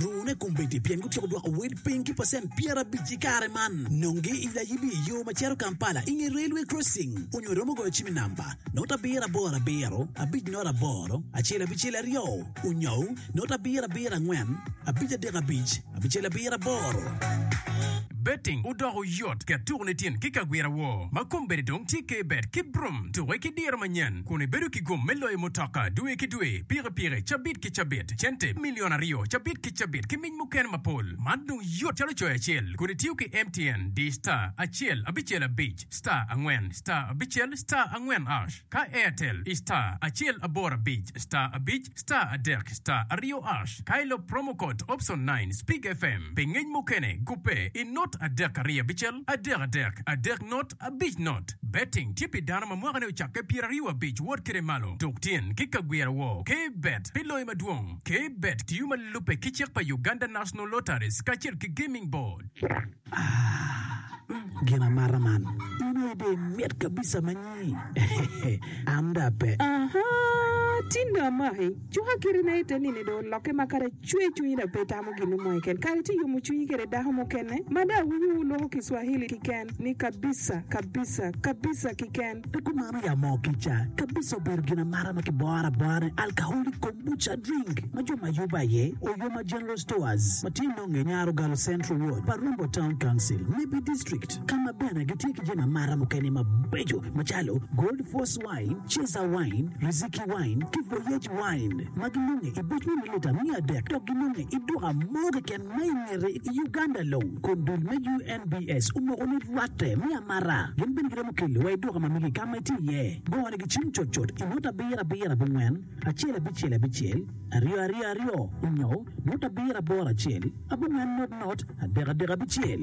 Luwune kombeddi pien gutyeko dwoko wel piny ki pacent pyerabic i kare man. Nongi i layibi i yo ma cito Kampala i nge railway crossing onyo iromo goyo cim i namba note abiro aboro abiro abic note aboro acel abicel aryo onyo note abiro abiro angwen abic adek abic abicel abiro aboro. Betting odoko yot ket tuku nitin ki kagwira wo ma kombeddi dong tye ke bet ki brum tuke ki diro manyen kun ibedo ki gum me loyo mutoka dwe ki dwe, pikipiki, cabit ki. ki cabit, cente milion aryo cabit ki cabit, ki mic mukene mapol. Man dong yot calo coyo acel kun itiyo ki MTN, di star, acel, abicel, abic, star, angwen, star, abicel, star, angwen ash. Ka Airtel, i star, acel, aboro, abic, star, abic, star, adek, star, aryo ash. Ka ilop promo code option nine Speak FM pi ngec mukene, gubbe i not adek aryo abicel, adek adek, adek not. Abic not, Betting tye pi dano ma mwakane ocakke pyeraryo abic wot kede malo tuk tyen ki ka gwiro wor ke bet pi loyo madwong. Ke bet tiyo ma lubbe ki cik pa Uganda National Lotteries kacel ki Gaming Board. Aah gin amata man in aye dong imit kabisa ma nyi eeh am dong ape. Ahaa, tinda amaki cuka kite na ite nini dong olokke ma kare. Cwer cwinyi dok pe itamo gin mo keken. Kare tye yomo cwinyi kwede dako mukene. Mada awinyo wu loko kiswahili kiken ni kabisa, kabisa, kabisa kiken. Pe kumano ya moo kica. Kabisa obedo gin amata ma kiboro abora ni alcoholic kombucha drink ma jo ma yubo aye Oyoma General Stores ma tye nonge Nyarogalo Central Ward pa Rumbo Town Council, Nebbi District, ka ma bene gitye ki jami amata mukene mabeco macalo Gold Force, Wine, Cesar Wine, Riziki Wine, ki Voyage Wine ma gilunge i boc me mililita miya adek dok gilunge i duka mo keken ma i ngete i Uganda long. Kun dul me UNBS omoko ni rwatte me amara gin bene giromo kelo wa i duka ma megi ka ma itye iye. Go ne gi cim cut cut i nota abiro abiro abongwen acel abicel abicel aryo aryo aryo onyo nota abiro aboro acel abongwen not not adek adek abicel.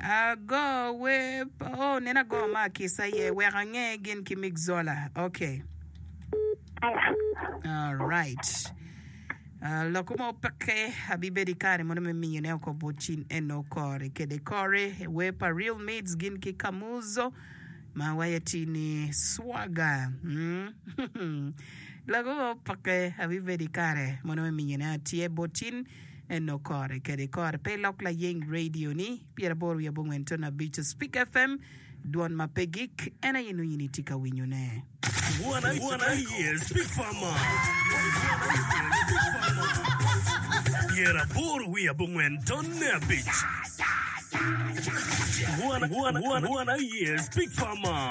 Ago wer, oh, neno ago ma akissa aye, wek ange gin ki Mick Zola. Okay. All right. Ah, loko ma opeke abibedo i kare mono me miyone oko bot cin eno kore kede kore wer pa Real Mids gin ki Kamuzo ma waye tye ni Swaga. Mm. Loko ma opeke abibedo i kare mono me miyone atye bot cin Eno kore kede kore pe ilok layeng radio ni pyera boro wiye abongwen tono abico speak FM dwon ma pe gik en aye nongo in itye ka winyo ne. Dwon aye speak farmer pyera boro wiye abongwen tone abic Dwon aye speak farmer.